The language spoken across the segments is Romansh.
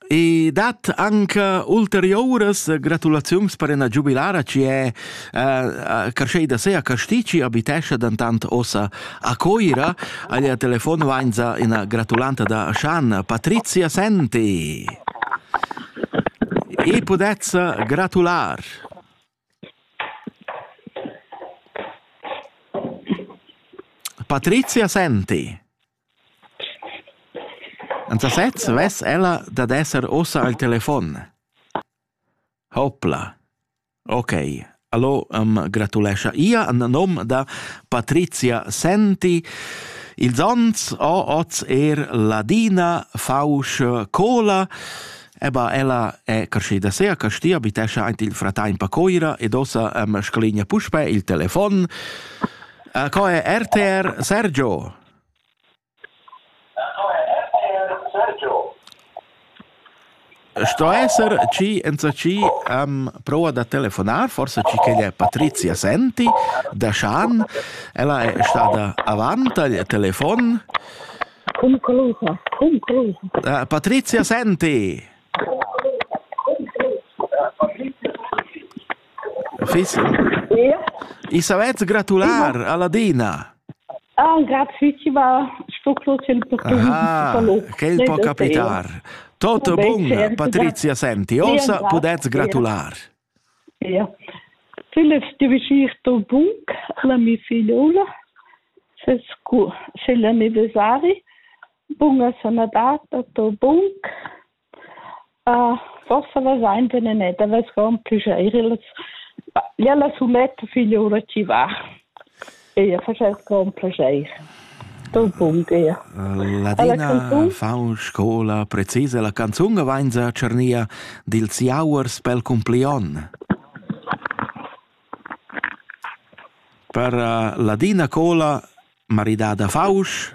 I dat anche ulteriuras gratulaziuns per ina giubilara chi è uh, carscheda se a Castici, abitescha dentant ossa a Coira. Aglia telefon vainza ina gratulanta da Schan, Patrizia Senti. E pudezza gratular. Patrizia Senti. En sasez vess ella dad esser ussa al telefon. Hopla. Ok, allo am gratulescha ia en nom da Patrizia Senti. Ils ons ho oz er Ladina Fausch Cola Eba ella è carschida sea, castia abitescia aint il fratain Pacoira ed ossa am scalinia puspe il telefon. Uh, co è RTR Sergio? Sto esser chi enzatgi am prouva da telefonar, forsa chi ch'el è Patrizia Senti da Schan. Ella è stada avant tagl telefon. Conclusa, conclusa. Uh, Patrizia Senti! Fiss? I savess gratular a Ladina. Ah, grazie, ci va. Sto clocere per tu. Ah, quel può capitare. Tutto bun, Patrizia, senti, ossa pudez gratular. Ja. Sellest Geschichte Bunk, la mia figliola, se la anniversario. Bunga sono data, to bunk. Forsa vazain benedetg da vescar ün püjair illas ja la suletta figliura chi va. Eir faschess sco ün plaschair. Dal punct eir. Ladina fa in scoula precisa la canzun e vainsa a tschernir dils jauers pel cumplion. Per Ladina Cola, maridada Fausch.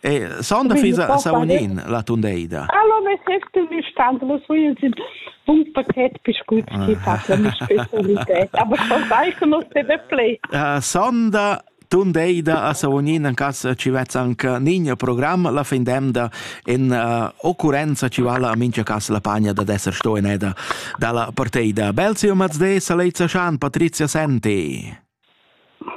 E sonda fisa saunin la tundeida. Allo ne sest mi stand lo so ins in bun paket biscuits chi fa la mi specialità, aber schon sai che non se ne play. Sonda tundeida a Savognin an cas ci vezza anche Nigno programm la fin demda in uh, occurrenza ci vala a mincha cas la pagna da d'esser sto in eda dalla parteida. Belzio Mazde, Salezza Schan, Patrizia Senti.